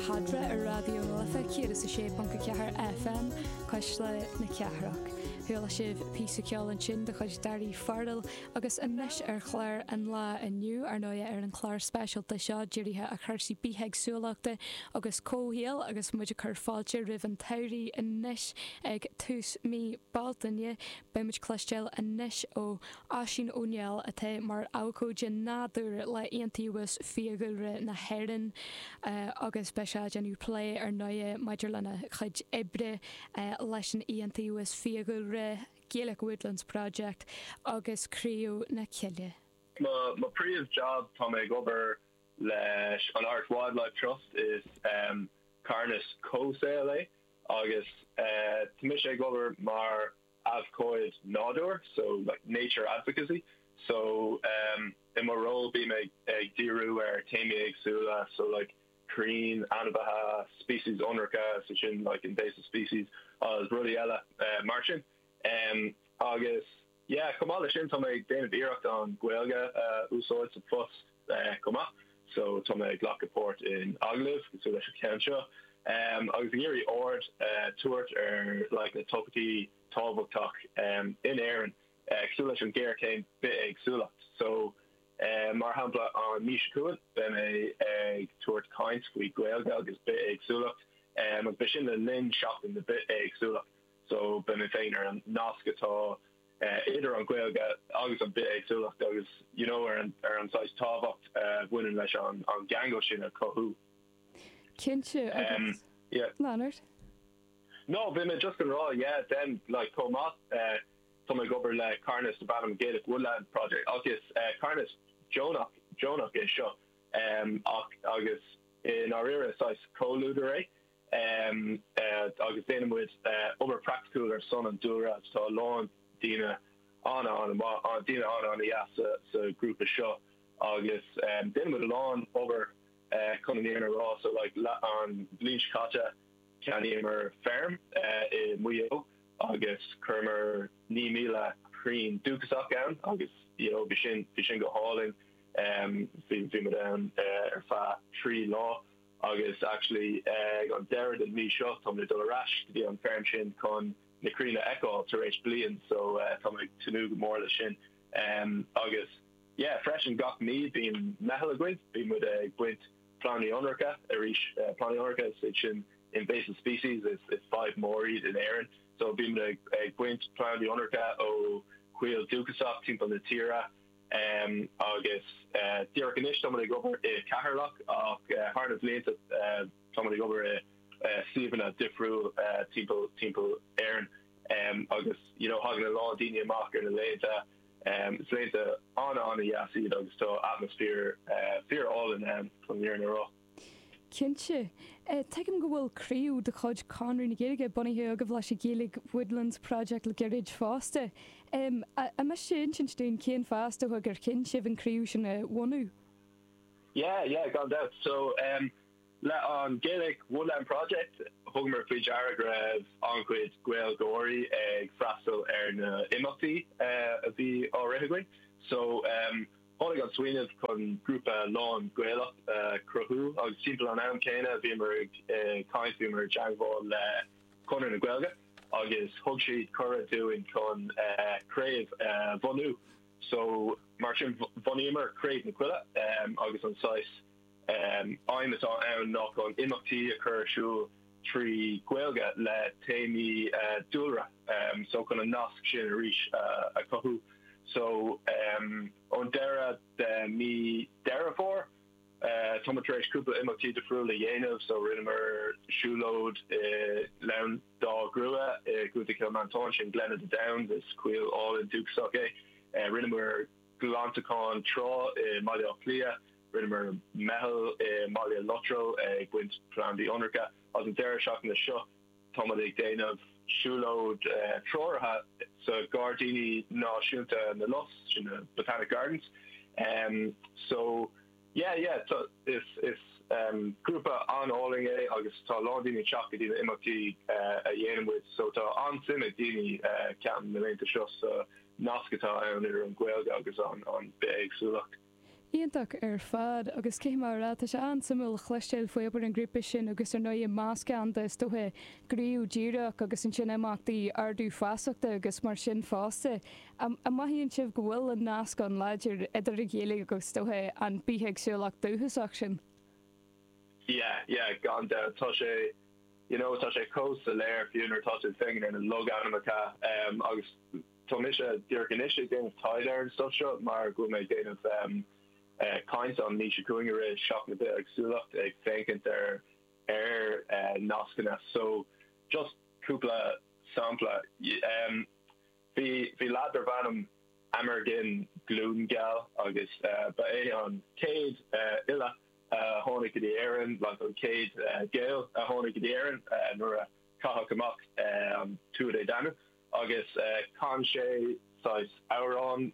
Fada ar Raidió na Life 106.4 FM, Cuisle na Cathrach. Chuala sibh píosa ceoil ansin de chuid Daoirí Farrell agus anois ar chlár an lá inniu, ar ndóigh, ar an chlár speisialta seo dírithe ar chúrsaí bithéagsúlachta agus comhshaoil agus muid ag cur fáilte roimh an tsamhraidh anois ag tús mí Bealtaine, Beidh muid ag cloisteáil anois ó Oisín Ó Néill atá mar abhcóide nádúir le Iontaobhas Fiadhúlra na hÉireann agus beidh sé ag déanamh plé ar ndóigh maidir lena chuid oibre leis an Iontaobhas Fiadhúlra, Gaelic Woodlands Project agus Críoch na Coille. Mo príomh jab, tá mé ag obair leis an Irish Wildlife Trust, is carthanas comhshaoil é Agus tá mise ag obair mar abhcóid nádúir, so like nature advocacy, so i mo ról bím ag díriú ar téamaí éagsúla, so like crainn, ainmhithe, speicis ionracha, so sin like invasive species, agus rudaí eile mar sin. Agus. Yeah, chomh maith le sin tá mé ag déanamh iarracht an Ghaeilge a úsáid sa phost chomh maith so tá mé ag glacadh páirt in agallaimh cosúil leis an cheann seo agus ag iarraidh aird a tabhairt ar like na topaicí tábhachtach in Éirinn cosúil leis an ghéarchéim bithéagsúlacht so mar shampla an mí seo chugainn beidh mé ag tabhairt caint faoi Gaeilge agus bithéagsúlacht agus beidh sin le linn seachtain na bithéagsúlacht. so beidh mé ag féachaint ar an nasc atá idir an Ghaeilge agus an bith-éagsúlacht agus you know ar an saghas tábhacht a bhaineann leis an gceangal sin a chothú. No, bhí mé just ag rá, yeah, then like chomh maith tá mé ag obair le carthanas darb ainm Gaelic Woodland Project agus carthanas deonach, deonach é seo agus i ndáiríre saghas comhluadar é agus déanann muid obair praiticiúil ar son an dúlra agus tá a lán daoine an-dheas sa ghrúpa seo agus déanann muid a lán obair chun an fhírinne a rá. So like an bhliain seo caite ceannaíomar feirm i Maigh Eo agus chuireamar 9,000 crainn dúchasach ann agus you know bhí sin go hálainn. Bhí muid ann ar feadh trí lá. Agus actually ag an deireadh den mhí seo tá mé ag dul ar ais go dtí an feirm sin chun na crainn a fheiceáil tar éis bliain so tá mé ag tnúth go mór leis sin. Agus yeah freisin gach mí bíonn meitheal againn, bíonn muid ag baint plandaí ionracha arís, plandaí ionracha is iad sin invasive species is is fadhb mór iad in Éirinn so bíonn muid ag baint plandaí ionracha ó choill dúchasach timpeall na tíre. Em agus eh díreach anois táimid ag obair i Ceatharlach ach eh thar na blianta em táimid ag obair i eh suíomhanna difriúil eh timpeall, timpeall Éireann. Em agus you know thagann a lán daoine amach ar na laethanta em is laethanta ana, ana dheas iad agus tá atmaisféar eh fíor álainn ann chun an fhírinne a rá. Cinnte, tuigim go bhfuil craobh de chuid Chonradh na Gaeilge bunaithe agaibh leis an Gaelic Woodland Project le gairid fosta. An miste leat insint dúinn cén fáth, is dócha, gur chinn sibh an chraobh sin a bhunú? Yeah, yeah, gan dabht. So, le an Gaelic Woodland Project, thugamar faoi deara go raibh an-chuid Gaeilgeoirí ag freastal ar na h-imeachtaí a bhí á rith againn. So, Tháinig an smaoineamh chun grúpa lán-Ghaelach a chruthú agus timpeall an am céanna bhíomar ag caint, bhíomar i dteangmháil le Conradh na Gaeilge agus thug siad cuireadh dúinn chun craobh a bhunú so mar sin bhunaíomar Craobh na Coille agus an saghas aidhm atá ann ná chun imeachtaí a chur ar siúl trí Ghaeilge le téamaí dúlra so chun an nasc sin arís a chothú. So ón deireadh de mí Deireadh Fómhair tá muid tar éis cúpla imeachtaí difriúil a dhéanamh. So rinneamar siúlóid i nGleann Dá Ghrua i gContae Chill Mhantáin, sin Glen of the Downs, is coill álainn dúchasach é. Rinneamar. glantachán trá i mBaile Átha Cliath, rinneamar meitheal i mBaile Lotrail ag baint plandaí ionracha agus an deireadh seachtaine seo táimid ag déanamh siúlóid treoraithe sa Gairdíní Náisiúnta na Lus, sin na Botanic Gardens. Yeah yeah tá is is grúpa an-álainn é agus tá lán daoine ag teacht go dtí na imeachtaí a dhéanann muid so tá an-suim ag daoine ceapaim na laethanta seo sa nasc atá ann idir an Ghaeilge agus an an bhithéagsúlacht. Iontach ar fad agus cinnte mar a, tá sé an-suimiúil cloisteáil faoi obair an ghrúpa sin agus ar ndóigh meascán de is dóiche gníomh díreach agus ansin imeachtaí ardú feasachta agus mar sin fosta. An mothaíonn sibh go bhfuil an nasc an-láidir idir an Ghaeilge agus todhchaí an bithéagsúlacht dúchasach sin? Yeah, yeah, gan dabht. Tá sé, you know, tá sé chomh soiléir, fiú nuair atá tú ag féachaint ar na logainmneacha. Agus tá mise díreach anois ag déanamh taighde ar an stuff seo mar go bhfuil mé ag déanamh caint an mhí seo chugainn i rith Seachtain na Bithéagsúlachta, ag féachaint ar ar nascanna. So, just cúpla sampla. Bhí bhí lad darbh ainm Amergin glún geal agus ba é an céad fhile a tháinig go dtí Éirinn like an céad Gael a tháinig go dtí Éirinn nuair a caitheadh amach an Tuatha Dé Danann agus chan sé saghas amhrán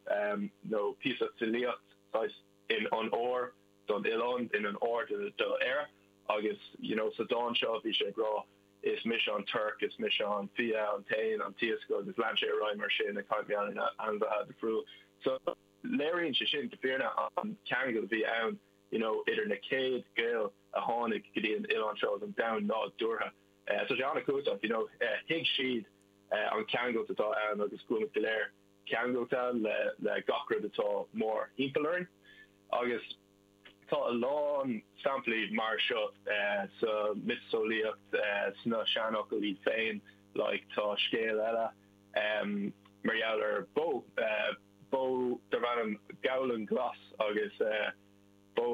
nó píosa filíocht saghas in onóir don oileán in onóir do Éire agus you know sa dán seo bhí sé ag rá Is mise an torc, is mise an fia, an t-éan, an t-iasc agus lean sé ar aghaidh mar sin ag caint mar gheall ar na hainmhithe difriúil. So léiríonn sé sin go fírinne an ceangal a bhí ann you know idir na céad Gaeil a tháinig go dtí an oileán seo agus an domhan nádúrtha. Eh so tá sé an-cumhachtach you know eh thuig siad eh an ceangailt atá ann agus go bhfuilimid go léir ceangailta le le gach rud atá mórthimpeall orainn agus Tá a lán samplaí mar seo sa mhiotaseolaíocht, sna seanfhocail iad féin, like tá scéal eile mar gheall ar bó, bó darb ainm Gabhlan Glas agus bó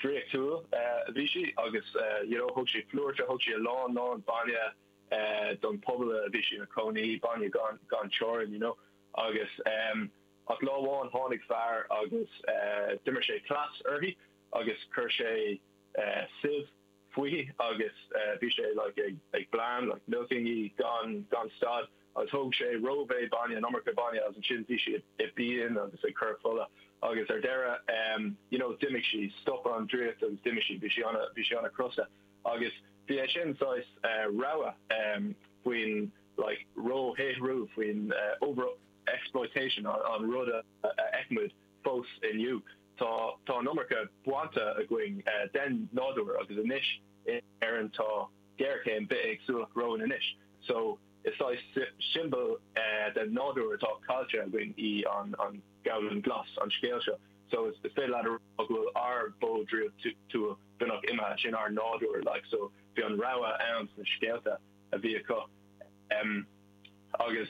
draíochtúil a bhí sí agus you know thug sí flúirse, thug sí a lán lán bainne don pobal a bhí sí ina cónaí, bainne gan teorainn you know agus. Ach lá amháin tháinig fear agus d'imir sé cleas uirthi agus chuir sé sieve fúithi agus bhí sé like ag bleán like milking í gan gan stad agus thóg sé rómhéid bainne an iomarca bainne agus ansin bhí sí i bpian agus ag cur fola agus ar deireadh em you know d'imigh sí stop an draíocht agus d'imigh sí bhí sí an bhí sí an-crosta agus bhí é sin saghas eh rabhadh em faoin like róshaothrú faoin eh over exploitation, an rud a fheicimid fós inniu. Tá an iomarca bainte againn den nádúr agus anois in Éirinn tá géarchéim bithéagsúlacht romhainn anois so is saghas siombail den nádúr atá caillte againn í an Gabhlan Glas, an scéal seo. So is féidir leat a rá go bhfuil ár bó draíochtúil beagnach imithe, sin ár nádúr like so bhí an rabhadh ann sna scéalta a bhí acu agus,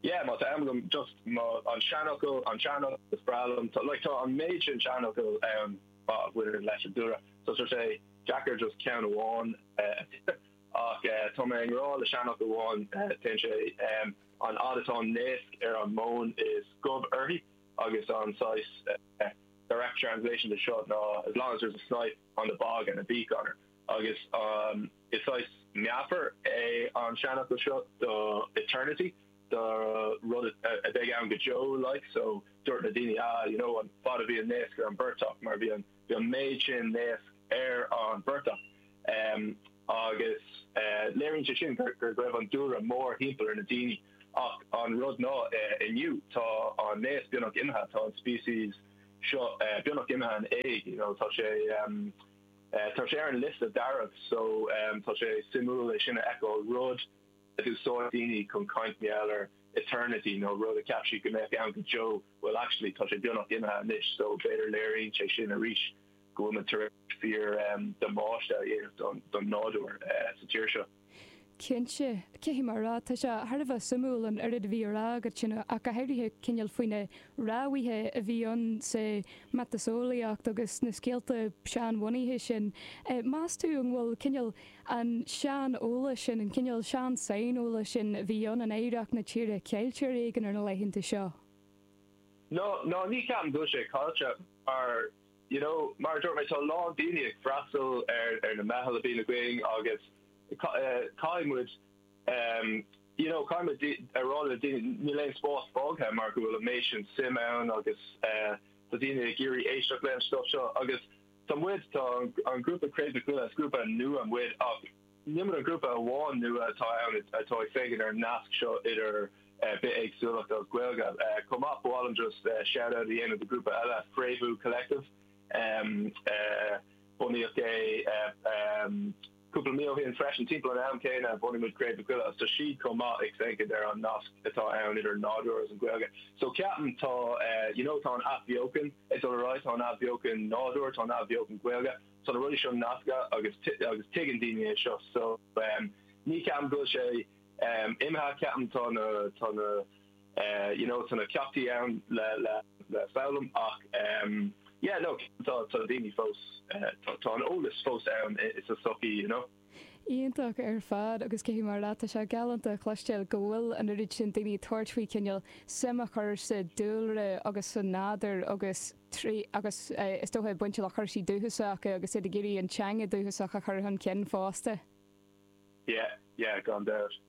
yeah má tá am agam just mo an seanfhocal an seanfhocal is breá liom tá like tá an méid sin seanfhocal ann a bhaineann leis an dúlra so tá sé deacair just ceann amháin a phioc ach tá mé i ngrá le seanfhocal amháin téann sé um an fhad atá an naosc ar an móin is gob uirthi agus an saghas direct translation de seo ná as long as there's a snipe on the bog and a beak on her Agus is saghas meafar é an seanfhocal seo do eternity, do rud a bheidh ann go deo like. So dúirt na daoine ah you know an fad a bhí an naosc ar an bportach mar bhí an bhí an méid sin naosc ar an bportach. Em agus eh léiríonn sé sin gur go raibh an dúlra mórthimpeall ar na daoine ach an rud ná eh inniu tá an naosc beagnach imithe tá an species seo eh beagnach imithe in éag you know tá sé em Tá sé ar an liosta dearg so tá sé suimiúil é sin a fheiceáil, rud a d'úsáid daoine chun caint i ngeall ar eternity nó rud a cheap siad go mbeadh ann go deo, bhuel actually tá sé beagnach imithe anois so b'fhéidir léiríonn sé sin arís go bhfuil muid tar éis fíor damáiste a dhéanamh don nádúr sa tír seo. Cinnte, caithfidh mé a rá, tá sé thar a bheith suimiúil an oiread a bhí á rá agat ansin ach go háirithe cineál faoi na rabhaidh a bhí ann sa miotaseolaíocht agus na scéalta seanbhunaithe sin. Meas tú an bhfuil cineál an sean-eolas sin, an cineál sean-saineolais sin a bhí ann in oidhreacht na tíre ceilte ar éigean ar na laethanta seo? No, no, ní ceapaim go bhfuil sé ceilte mar You know, mar a dúirt mé, tá a lán daoine ag freastal ar na meithil a bhíonn againn agus caithfidh muid, em, you know, caithfidh muid a rá le daoine, níl aon spás fágtha mar go bhfuil an méid sin suim ann agus, eh, tá daoine ag iarraidh éisteacht leis an stuff seo agus tá muid, tá an grúpa Cré na Coille, is grúpa nua muid ach, Ní muid an grúpa amháin nua atá ann atá ag féachaint ar an nasc seo idir bithéagsúlacht agus Gaeilge chomh maith. Ba mhaith liom just shout out a dhéanamh do grúpa eile, Fréamhú Collective. Bunaíodh é cúpla mí ó shin freisin, timpeall an am céanna a bhunaigh muid Cré na Coille, agus tá siad chomh maith ag féachaint ar an nasc atá ann idir an nádúr agus an Ghaeilge. So ceapaim tá, you know, tá an athbheochan ag dul ar aghaidh, tá an athbheochan nádúir, tá an athbheochan Ghaeilge, tá na rudaí seo nasctha agus agus tuigeann daoine é seo so ní ceapaim go bhfuil sé imithe ceapaim tá na tá na you know tá na ceachtaí ann le le le foghlaim ach yeah no tá tá daoine fós tá an eolas fós ann insa sochaí you know Iontach ar fad agus caithfidh mé a rá leat, tá sé galánta a chloisteáil go bhfuil an oiread sin daoine ag tabhairt faoi chineál suim a chur sa dúlra agus sa nádúr agus trí agus is dócha ag baint le cúrsaí dúchasacha agus iad ag iarraidh an teanga dúchasach a chur chun cinn fosta. Yeah, yeah, gan dabht.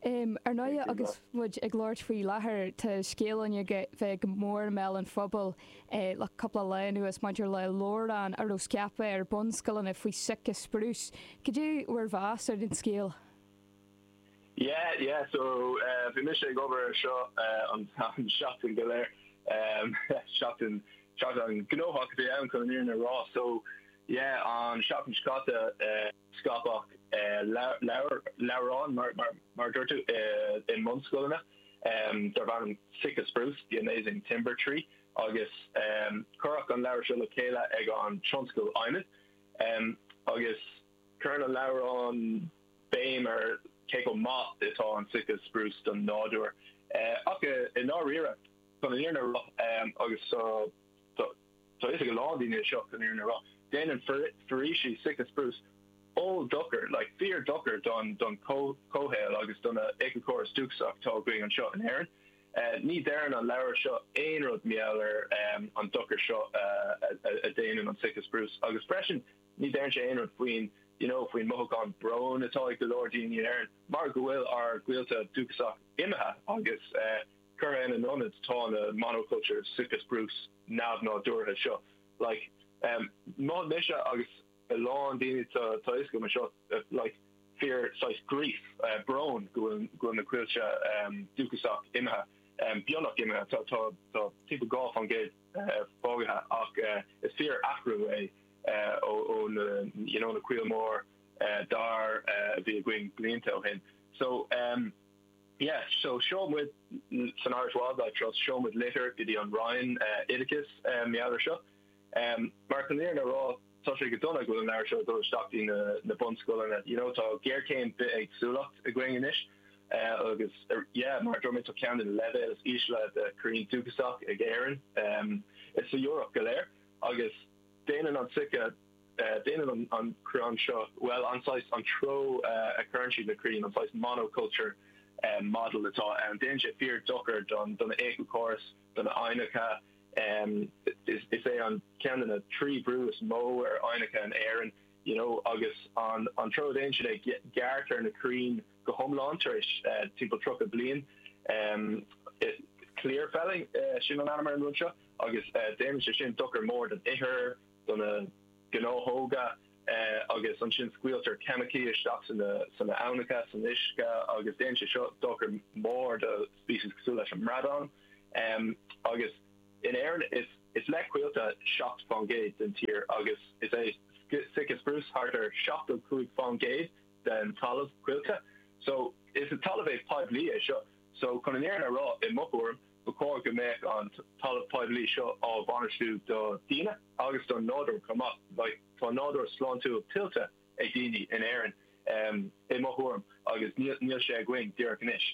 Ar ndóighe, agus muid ag labhairt faoi láthair, tá scéal an Ghaeilge bhí go mór i mbéal an phobail le cúpla lá anuas maidir le leabhrán a raibh scaipthe ar bhunscoileanna faoi Sitka spruce. Cad é bhur meas ar an scéal? Yeah, yeah, so bhí mise ag obair ar seo an seachtain go léir, seachtain, seachtain gnóthach a bhí ann chun an fhírinne a rá, so yeah, an seachtain seo caite, scaipeadh leabhrán, mar a dúirt tú, i mbunscoileanna darb ainm Sitka Spruce, The Amazing Timber Tree agus cuireadh an leabhar seo le chéile ag an tionscal adhmaid agus cuireann an leabhrán béim ar cé chomh maith atá an Sitka Spruce don nádúr ach i ndáiríre chun an fhírinne a rá agus Tá 'fhios ag a lán daoine seo chun an fhírinne a rá. Déanann foraoisí Sitka spruce oll-dochar, like fíor dochar don don chomhshaol agus don éiceachóras dúchasach tá againn anseo in Éirinn. Ní deireann an leabhar seo aon rud mar gheall ar an dochar seo a déanann an Sitka spruce agus freisin ní deireann sé aon rud faoin you know faoin mothúchán bróin atá ag go leor daoine in Éirinn mar go bhfuil ár gcoillte dúchasach imithe agus eh Curtha ina n-ionad tá na monocultures, Sitka spruce neamh-nádúrtha seo. Like, em, mhothaigh mise agus a lán daoine tá tá 'fhios agam anseo, like, fíor saghas grief, eh, brón go bhfuil go bhfuil na coillte, em, dúchasach imithe, em, beagnach imithe. Tá tá tá timpeall dhá faoin gcéad, eh, fágtha ach, eh, is fíor-athrú é, eh, ó ó na, you know, na coill mór, eh, dair, eh, a bhí againn blianta ó shin. So, em, Yeah, so seol muid, san Irish Wildlife Trust, seol muid litir go dtí an Roinn Oideachais mar gheall air seo. Mar chun an fhírinne a rá, tá sé go dona go bhfuil an leabhar seo ag dul isteach i na bunscoileanna. You know, tá géarchéim bith-éagsúlacht againn anois agus, yeah, mar a dúirt mé, tá ceann de na leibhéil is ísle de chrainn dúchasach ag Éirinn i sa Eoraip go léir. Agus déanann an Sitka Déanann an crann seo, bhuel, an saghas, an treo a chuireann siad na crainn, an saghas monoculture model atá ann, déanann sé fíor dochar don éiceachóras, do na haibhneacha. Is é an ceann de na trí bhrú is mó ar aibhneacha in Éirinn, you know, agus an an treo a déanann siad é, gearrtar na crainn go hiomlán tar éis timpeall tríocha bliain. Clear felling, sin an ainm ar an rud seo agus déanann sé sin dochar mór don ithir, do na gnáthóga agus ansin scaoiltear ceimicí isteach sna aibhneacha, san uisce agus déanann sé seo dochar mór do species cosúil leis an mbradán agus in Éirinn is le Coillte 7 fán gcéad den tír agus is é Sitka Spruce thart ar 75 fán gcéad den talamh Coillte so is talamh poiblí é seo so chun an fhírinne a rá i mo thuairim Ba chóir go mbeadh an talamh poiblí seo á bhainistiú do dhaoine agus don nádúr chomh maith. Tá nádúr sláintiúil tuillte ag daoine in Éirinn, i mo thuairim, agus níl sé againn díreach anois.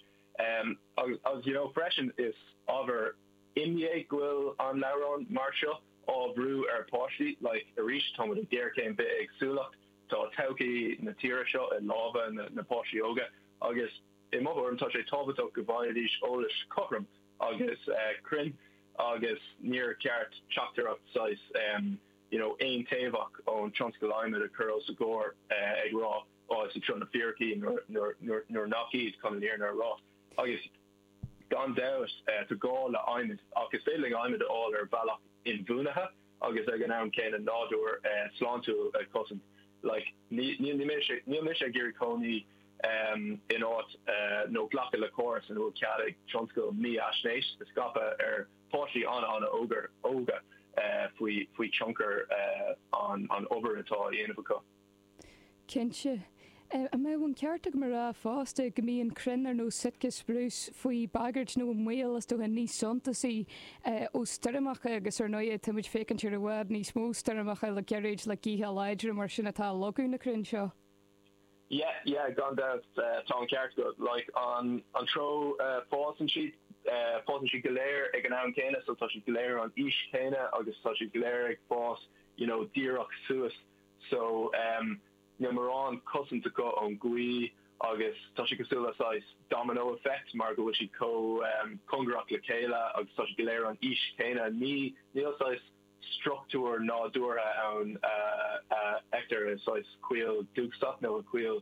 Agus you know freisin, is ábhar imní é go bhfuil leabhrán mar seo á bhrú ar pháistí. Like arís, táimid i ngéarchéim bithéagsúlacht, tá todhchaí na tíre seo i lámha na páistí óga agus. I mo thuairim, tá sé tábhachtach go bhfaighidís eolas cothrom agus cruinn agus níor cheart teachtaireacht saghas you know aontaobhach ón tionscal adhmaid a chur os a gcomhair ag rá oh is iad seo na fíricí nuair nach iad, chun an fhírinne a rá. Agus gan dabht tá gá le adhmad ach is féidir linn adhmad a fháil ar bhealach inbhuanaithe. agus ag an am céanna nádúr sláintiúil a chosaint like níl mise ag iarraidh cónaí in áit nó glacadh le córas ina bhfuil cead ag tionscal mífhaisnéis a scaipeadh ar pháistí an-an-óga faoi tionchar an obair atá á dhéanamh acu. Cinnte, an mbeadh an ceart agam a rá fosta go mbíonn crainn ar nós Sitka Spruce faoi bhagairt nó i mbaol is dócha níos suntasaí ó stoirmeacha agus ar ndóigh tá muid ag féachaint ar i bhfad níos mó stoirmeacha le gairid le gaotha láidre mar sin atá ag leagadh na crainn seo? Yeah, yeah, gan dabht, tá an ceart agat. Like, an an treo a fásann siad, fásann siad go léir ag an am céanna so tá siad go léir an aois chéanna agus tá siad go léir ag fás you know díreach suas. so um níl mórán cosaint acu ón gaoth agus tá sé cosúil le saghas domino effect mar go bhfuil siad chomh um cóngarach le chéile agus tá siad go léir an aois chéanna ní níl saghas structúr nádúrtha ann a a fheictear i saghas coill dúchasach nó i coill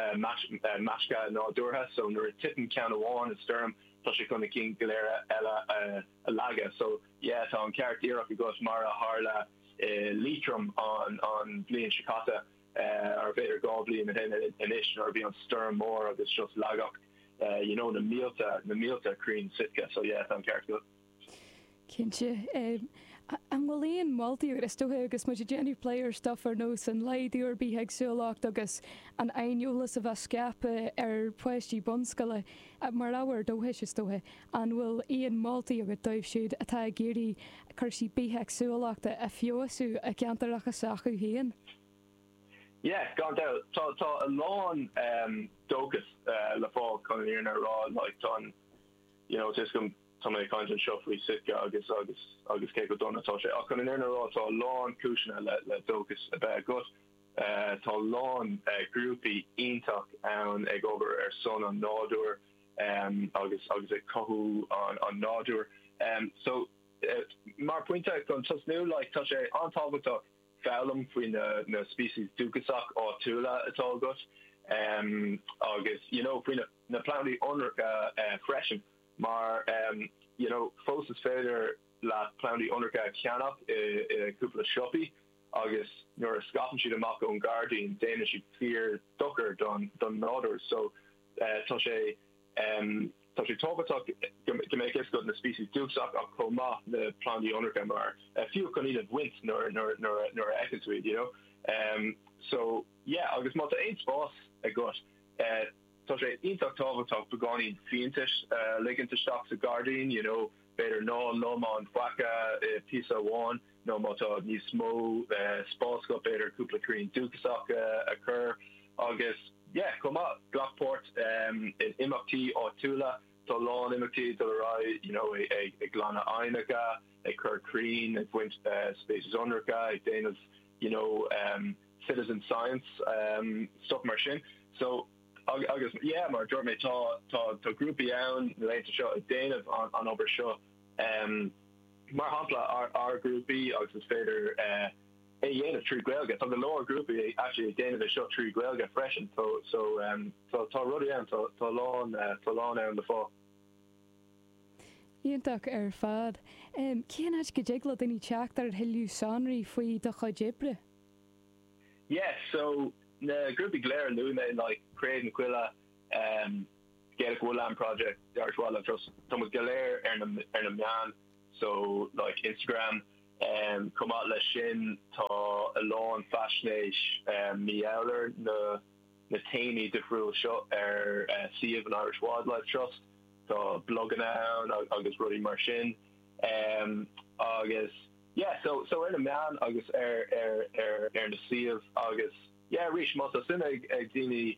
eh mais eh measctha nádúrtha so nuair a titeann ceann amháin i stoirm tá sé chun na cinn go léir eile a a leagadh so yeah tá an ceart díreach agat mar a tharla i Liatroim an bhliain seo caite, nó b'fhéidir dhá bhliain ó shin anois, nuair a bhí an stoirm mór agus just leagadh you know na mílte, na mílte crainn sitka, so yeah tá an ceart agat. Cinnte. An bhfuil aon mholtaí, is dócha agus muid ag déanamh plé ar stuff ar nós an laghdú ar bithéagsúlacht agus an aineolas a bheith scaipthe ar pháistí bunscoile, Mar ábhar dóchais, is dócha, an bhfuil aon mholtaí agat dóibh siúd atá ag iarraidh cúrsaí bithéagsúlachta a fheabhsú i gceantaracha s'acu féin? Yeah, gan dabht. Tá, tá a lán dóchas le fáil chun an fhírinne a rá. Like, tá an, you know, tá a fhios agam, tá mé ag caint anseo faoi Sitka agus, agus, agus cé chomh dona atá sé. Ach chun an fhírinne a rá, tá a lán cúiseanna le, le dóchas a bheith agat. Tá a lán grúpaí iontach ann ag obair ar son an nádúir agus agus ag cothú an nádúir. So mar pointe chun tosnú like tá sé an-tábhachtach foghlaim faoi na na species dúchasach áitiúla atá agat agus you know faoi na na plandaí ionracha freisin mar you know fós is féidir leat plandaí ionracha a cheannach i cúpla siopaí agus nuair a scaipeann siad amach ón ngairdín déanann siad fíor dochar don nádúr so tá sé tá sé tábhachtach go mbeadh fhios agat na species dúchasach ach chomh maith na plandaí ionracha mar fiú chun iad a bhaint nuair nuair nuair a nuair a fheiceann tú iad you know so yeah agus má tá aon spás agat eh Tá sé iontach tábhachtach beagáinín fiántas a ligint isteach sa ghairdín, you know, b'fhéidir ná lomann faic i bpíosa amháin nó má tá níos mó spás agat b'fhéidir cúpla crainn dúchasach a chur agus yeah, chomh maith, glac páirt in imeachtaí áitiúla, tá a lán imeachtaí ag dul ar aghaidh, you know, ag glanadh aibhneacha, ag cur crainn, ag baint species ionracha, ag déanamh, you know, citizen science, stuff mar sin. So, agus yeah, mar a dúirt mé, tá, tá, tá grúpaí ann na laethanta seo ag déanamh an obair seo. Mar shampla, ár, ár grúpaí, agus is féidir é a dhéanamh trí Ghaeilge. Tá go leor grúpaí actually ag déanamh é seo trí Ghaeilge freisin. So, so, tá, tá rudaí ann, tá, tá a lán, tá a lán ann le fáil. Iontach ar fad. Cén áit go dtig le daoine teacht ar thuilleadh sonraí faoi do chuid oibre? Yes, so na grúpaí go léir a luaigh mé, like Craobh na Coille, um, Gaelic Woodland Project, The Irish Wildlife Trust, tá muid go léir ar na, ar na meáin, so like Instagram, um, chomh maith leis sin tá a lán faisnéis, um, maidir leis na, na téamaí difriúil seo ar, eh, suíomh an Irish Wildlife Trust, tá bloganna ann agus rudaí mar sin, um, agus. Yeah, so, so ar na meáin agus ar, ar, ar, ar na suímh agus, yeah, arís, má tá suim ag, ag daoine,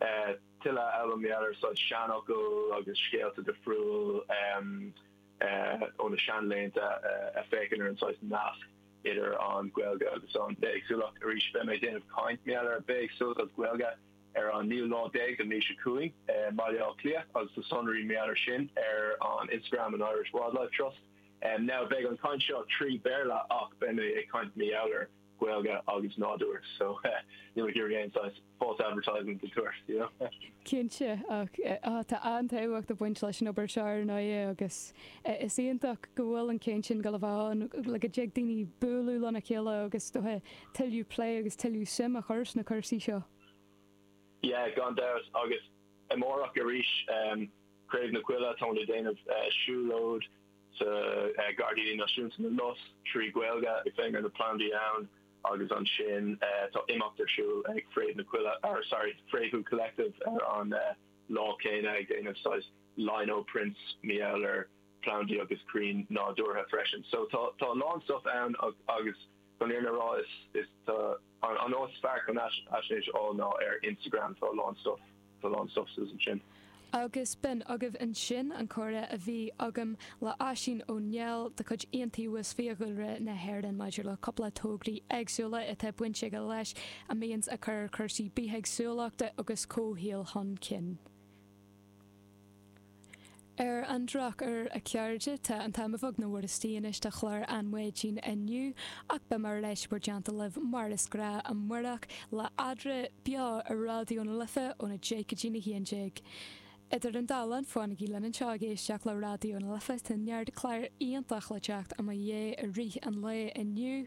eh, tuilleadh a fháil mar gheall ar saghas seanfhocail agus scéalta difriúil, em, eh, ó na seanlaethanta a, a féachann ar an saghas nasc idir an Ghaeilge agus an bhithéagsúlacht. Arís, beidh mé ag déanamh caint mar gheall ar bithéagsúlacht agus Gaeilge ar an naoú lá déag den mhí seo chugainn i mBaile Átha Cliath agus na sonraí mar gheall ar sin ar an Instagram an Irish Wildlife Trust. Now beidh an caint seo trí Béarla ach beidh mé ag caint mar gheall ar Gaeilge agus nádúir so níl mé ag iarraidh aon saghas false advertising a thabhairt, you know. Cinnte, ach tá an-tábhacht ag baint leis an obair seo ar ndóigh agus is iontach go bhfuil an chaint sin ag gabháil a bheith ann le go dtig daoine bualadh lena chéile agus dóigh tuilleadh plé agus tuilleadh suim a chur sna cúrsaí seo. Yeah, gan dabht, agus amárach arís. Craobh na Coille, táimid ag déanamh siúlóid sa Gairdíní Náisiúnta na Lus trí Ghaeilge ag féachaint ar na plandaí ann agus ansin tá imeacht ar siúl ag Fréamh na Coille, or sorry, Fréamhú Collective ar an lá céanna ag déanamh saghas lino prints mar gheall ar plandaí agus crainn nádúrtha freisin. So tá tá a lán stuff ann agus chun an fhírinne a rá is tá An áit is fearr chun fhaisnéis a fháil ná ar Instagram, tá a lán stuif, tá a lán stuif suas ansin. Agus b'in agaibh ansin an comhrá a bhí agam le Oisín Ó Néill de chuid Iontaobhas Fiadhúlra na hÉireann maidir le cúpla tograí éagsúla atá baint aige leis a mbíonns ag cur cúrsaí bithéagsúlachta agus comhshaoil chun cinn. Ar an drochuair a chairde, tá an t-am a bheag nó a mhór istigh anois do chlár na maidine inniu, ach beidh mé ar ais in bhur dteannta libh mar is gnáth amáireach, le Eadra, beo ar Raidió na Life óna deich go dtí na haon déag. Idir an dá linn, fanaigí linn anseo ag éisteacht le Raidió na Life, tá neart clár iontach le teacht i mo dhiaidh i rith an lae inniu,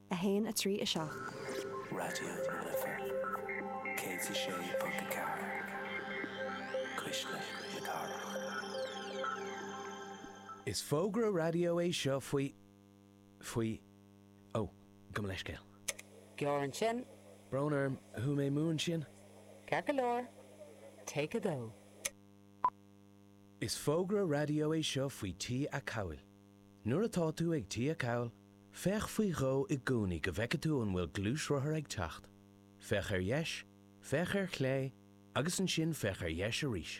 1, 3, 7. Raidió na Life 106.4, Cuisle na Cathrach. Is fógra raidió é seo faoi, faoi, ó, gabh mo leithscéal. Gearr ansin. Brón orm, chuaigh mé amú ansin. Ceart go leor, Take 2. Is fógra raidió é seo faoi T-acomhail. Nuair atá tú ag T-acomhal, féach faoi dhó i gcónaí go bhfeice tú an bhfuil gluaisrothar ag teacht. Féach ar dheis, féach ar chlé agus ansin féach ar dheis arís.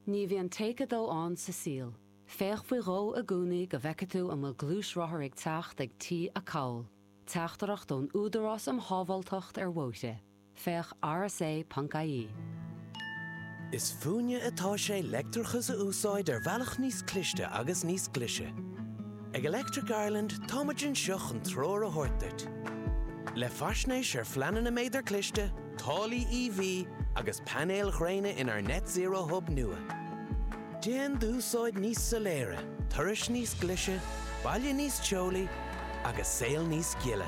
Ní bhíonn Take 2 ann sa saol. Féach faoi dhó i gcónaí go bhfeice tú an bhfuil gluaisrothar ag teacht ag T-acomhal. Teachtaireacht ón Údarás um Shábháilteacht ar Bhóithre. Féach rsa.ie. Is fúinne atá sé leictreachas a úsáid ar bhealach níos cliste agus níos glaise. Ag Electric Ireland táimid anseo chun treoir a thabhairt duit. Le faisnéis ar phleananna méadair cliste, táillí EV agus painéil ghréine inár Net Zero Hub nua, déan d'úsáid níos soiléire, turais níos glaise, baile níos teolaí agus saol níos gile.